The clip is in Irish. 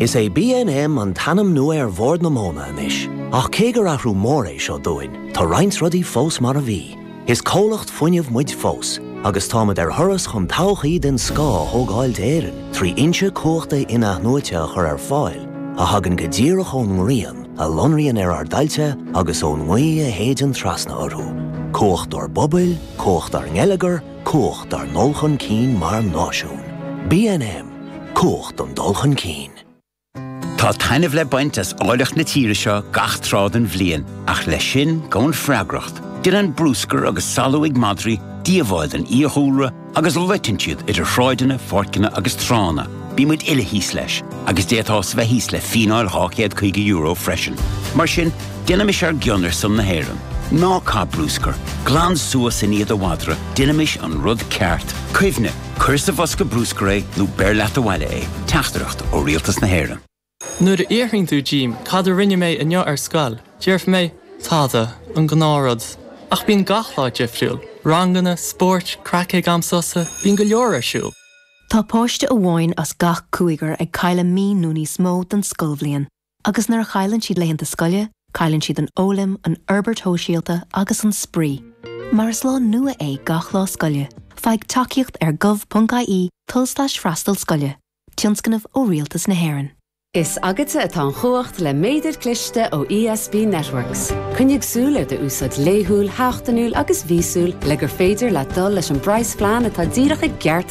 Is é BNM an t-ainm nua ar Bhord na Móna anois, ach cé gur athrú mór é seo dúinn, tá roinnt rudaí fós mar a bhí. Is comhlacht fuinnimh muid fós, agus táimid ar thuras chun todhchaí den scoth a thógáil d'Éirinn trí fhoinse cumhachta in-athnuaite a chur ar fáil a thagann go díreach ón ngrian a lonraíonn ar ár dtailte agus ón ngaoth a shéideann trasna orthu. Cumhacht ár bpobail, cumhacht ár ngeilleagar, Cumhacht ár ndul chun cinn mar náisiún. BNM, Cumhacht an dul chun cinn. Tá taitneamh le baint as áilleacht na tíre seo gach tráth den bhliain, ach leis sin gabhann freagracht. Déanann brúscar agus salú ag madraí díobháil don fhiadhúlra agus loiteann siad idir shráideanna, pháirceanna agus tránna. Bíonn muid uile thíos leis, agus d'fhéadfá bheith thíos le fíneáil €250 freisin. Mar sin, Déanaimis ar gcion ar son na hÉireann. Ná caith brúscar. Glan suas i ndiaidh do mhadra. Déanaimis an rud ceart. Cuimhnigh, cuir sa bhosca brúscair é nó beir leat abhaile é. Teachtaireacht ó Rialtas na hÉireann. Nuair a fhiafraíonn tú díom cad a rinne mé inniu ar scoil, déarfaidh mé, tada, an gnáthrud. Ach bíonn gach lá difriúil. Ranganna, spóirt, craic ag am sosa, bíonn go leor ar siúl. Tá páiste amháin as gach cúigear ag cailleadh mí nó níos mó den scoilbhliain. Agus nuair a chailleann siad laethanta scoile, cailleann siad an fhoghlaim, an fhorbairt shóisialta agus an spraoi. Mar is lá nua é gach lá scoile, faigh tacaíocht ar gov.ie tulslais freastal scoile, tionscnamh ó Rialtas na hÉireann. Is agatsa atá an chumhacht le méadar cliste ó ESB Networks. Coinnigh súil ar do úsáid laethúil, sheachtainiúil agus mhíosúil le gur féidir leat dul leis an bpraghasphlean atá díreach i gceart